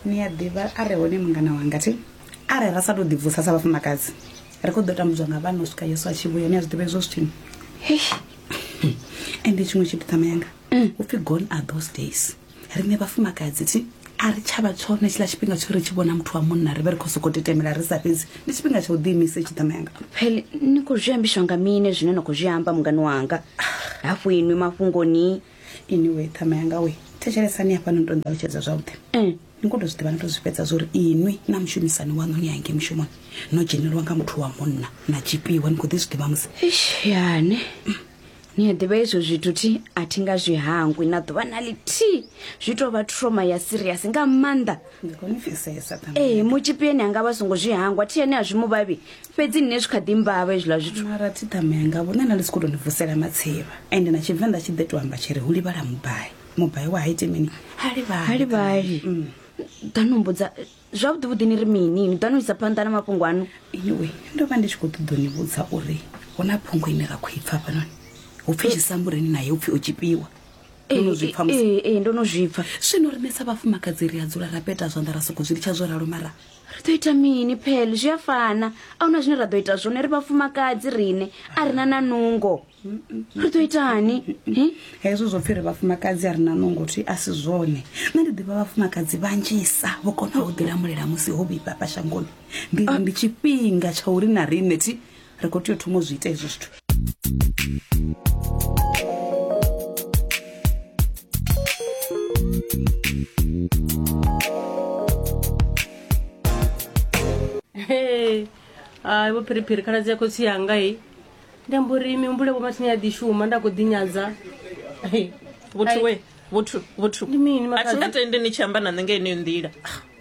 ni a ḓivha a re hone mungana wanga thi arali ra sa tou ḓibvusa sa vhafumakadzi ri khou ḓo tambudzwa nga vhana u swika yesu a tshi vhuya ni a zwi ḓivha hezwo zwithini ende tshiṅwe tshithu ṱama yanga mm. u pfhi gone are those days riṋe vhafumakadzi thi a ri tshavha tshone tshiḽa tshifhinga tsho ri tshi vhona muthu wa munna ri vhe ri khou sokou tetemela ri sa fhedzi ndi tshifhinga tsha u ḓiimisa itshi ṱama yanga pele ni khou zwi ambiswa nga mine zwine na khou zwi amba mungani wanga hafhu inwi mafhungoni inwi ṱhama yanga we thetshelesani hafha no to nṱalutshedza zwavhuḓi mm. ni khou to zwi ḓivha no to zwi fhedza zwa uri inwi na mushumisani waṋu ni hange mushumoni no dzhenelwa nga muthu wa munna na tshipiwa ni khou ḓi zwi ḓivha musi yane ni a ḓivha izwo zwithu thi a thi nga zwi hangwi na ḓuvha na lithihi zwi tou vha troma ya siriasi nga maanḓa ee mutshipieni a nga vha songo zwi hangwa thi ane a zwi muvhavhi fhedzi nṋe zwi kha ḓi mbavha hezwiḽa zwithu mara thidamanga vhone na ndi si khou tou ni vusela matsivha ende na tshivenḓa tshi ḓe to amba tshi ri hu livhala mubai mubai wa haiti mini ha livhali ha livhali mm. ḓa no mbudza zwavhuḓi vhuḓi ni ri mini ni ḓa no isa phanḓa na mafhungo ano anyway ndo vha ndi tshi khou ṱoḓo ni vhudza uri hu na phungo ine ra khou i pfa fhanoni hu pfi tshisambureni naye u pfi o tshipiwa ee eh, eh, ndo no zwipfa zwino rinesa vhafumakadzi ri a dzula ra peta zwanḓa ra soko zwi litsha zwo ralo mara ri ḓo ita mini phele zwi a fana a huna zwine ra ḓo ita zwone ri vhafumakadzi rine a ri na na nungo ri ḓo itani hezwo zwo pfhi ri vhafumakadzi a ri na nungo thi a si zwone nṋe ndi ḓivha vhafumakadzi vhanzhisa vho kona u ḓilamulela musi ho vhifha fha shangoni ndi ndi tshifhinga tsha uri na rine thi ri khou tea u thoma u zwi ita hezwo zwithu hai vho phiriphiri khaladzi ya khotsi yanga i ndi amba uri mihumbulo vho mathini ya ḓi shuma nda khou ḓinyadza vhothu we vhothu vhothu ndi mini a thi nga tendi ni tshi amba na nṋe nga yeneyo nḓila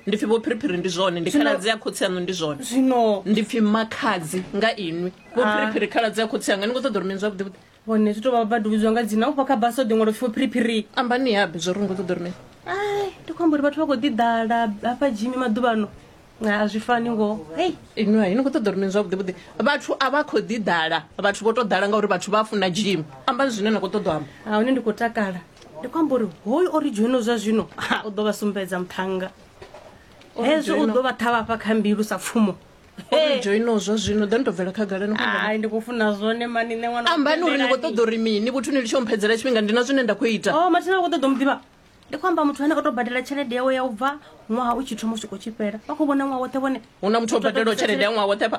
ndi pfi vho phiriphiri ndi zwone ndi khaladzi ya khotsi aṋu ndi zwone zwino ndi pfi makhadzi nga inwi vho ah. phiriphiri khaladzi ya khotsi anga ni khou ṱoḓa uri mini zwavhuḓi vhuḓi vhone zwi tou vha vha duvidzwa nga dzina ufha kha basa o ḓiṅwalo pfi vho phiriphiri ambani yabe zwo ri ni khou ṱoḓa uri mini ai ndi khou amba uri vhathu vha khou ḓiḓala hafha jimi maḓuvhano a zwi fani ngo hei inwi hai ni khou ṱoḓa uri mini zwavhuḓi vhuḓi vhathu a vha khou ḓiḓala vhathu vho tou ḓala ngauri vhathu vha funa jimi ambani zwine na khou ṱoḓa amba a hune ndi khou takala ndi khou amba uri hoyu o ri dzhoino zwa zwino u ḓo vha sumbedza muthannga hezwo u ḓo vha ṱhavhafha kha mbilu sa pfumo joino zwa zwino ḓo ni to bvela khagalani ai ndi khou funa zwone mani nṋe ṅwana ambani uri ni khou ṱoḓa uri mini vhuthu ni litsho mphedzela tshifhinga ndi na zwine nda khou ita o mathina khou ṱoḓa muḓivha ndi khou amba muthu ane o tou badela tshelede yawe ya u bva ṅwaha u tshi thoma u swika u tshi fhela vha khou vhona ṅwaha woṱhe vhone hu na muthu o badelaho tshelede ya ṅwaha woṱhe pha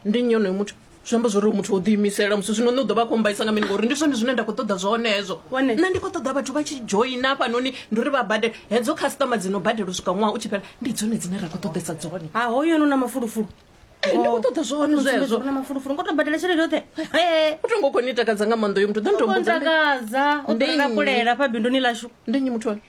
ndi nyonoyo muthu zwi amba zwori muthu o ḓiimisela musi zwino nṋe u ḓo vha a khou mbaisa nga mini ngori ndi zwone zwine nda khou ṱoḓa zwone hezwo nṋe ndi khou ṱoḓa vhathu vha tshi dzhoina hafhanoni ndi uri vha badele hedzo khasitama dzi no badela u swika ṅwaha u tshi fhela ndi dzone dzine ra khou ṱoḓesa dzone ha hoyo no na mafulufulu eh, ndi khou ṱoḓa zwone zwezwo na mafulufulu ngo to badela tshelede yoṱhe eh. u tongo khou ni takadza nga maanḓa yo muthu ḓo ntombotakadza u ḓo takulela fha binduni lashu ndi nyi muthu one